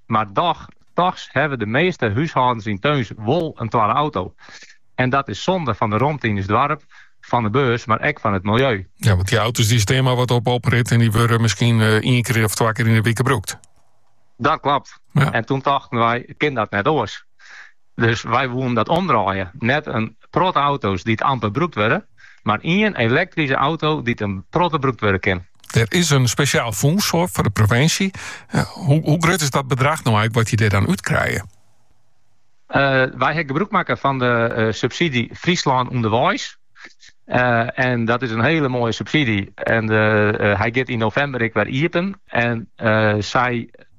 Mar dochs, tochs hawwe de measte húshâldens yn Tsjom wol in twadde auto. En dat is sonde fan de romte yn ús doarp, fan de beurs, mar ek fan it miljeu. Ja, want dy auto's dy stean mar wat op oprit en dy wurde miskien eh, ien kear of twa kear yn de wike brûkt. Dat klopt. Ja. En toen tochten wy, kin dat net oors? Dus wy woenen dat omdraaie. Net in protte auto's dy't amper brûkt wurde, mar ien elektryske auto dy't in protte brûkt wurde kin. Der is in spesjaal fûns foar fan de provinsje. Hoe grut is dat bedrach no eink wat je der dan út krije? Eh, wy ha gebrûk makke fan de eh, subsydzje Fryslân Underweis. Eh, en dat is in hiele moaie subsydzje. En hy giet yn novimber ek wer iepen. En sy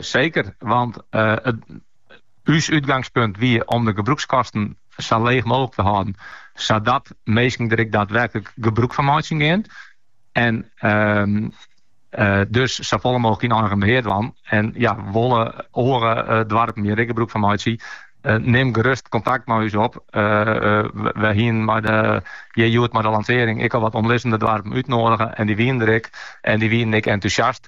Seker, want ús útgangspunt wie om de gebrûkskosten sa leech mooglik te hâlden, sadat minsken der ek daadwerklik gebrûk fan meitsje gean. En dus safolle mooglik yn eigen behear dwaan. En ja, wolle oare doarpen hjir ek gebrûk fan meitsje, nim gerust kontakt mei ús op. Wy hienen hjir hjoed mei de lansearring ek al wat omlizzende doarpen útnodige en dy wienen der ek en dy wienen ek entûsjast.